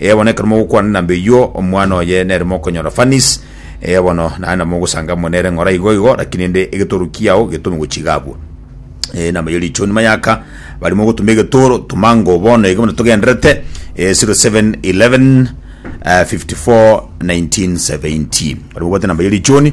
Ee bono ekero mogokwana na mbeywo omwana oye nere mokonyora fanis ee bono naye na mogosanga amo nere ng'ora igo igo lakini ende egetoro kiao getome gochiga abwo ee namo ye richo nyuma yaka bari mogotuma egetoro tumango bono iga bono togenderete ee 0711 uh, 54 1970 bari mogobwate namba ye richoni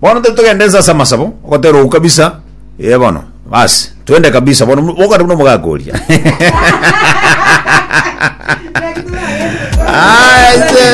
Bono tari togende nse ase amasabo, ogotera ou kabisa. Ee bono, basi, twende kabisa bono, bokare buna omogaka oria. Aya, ise.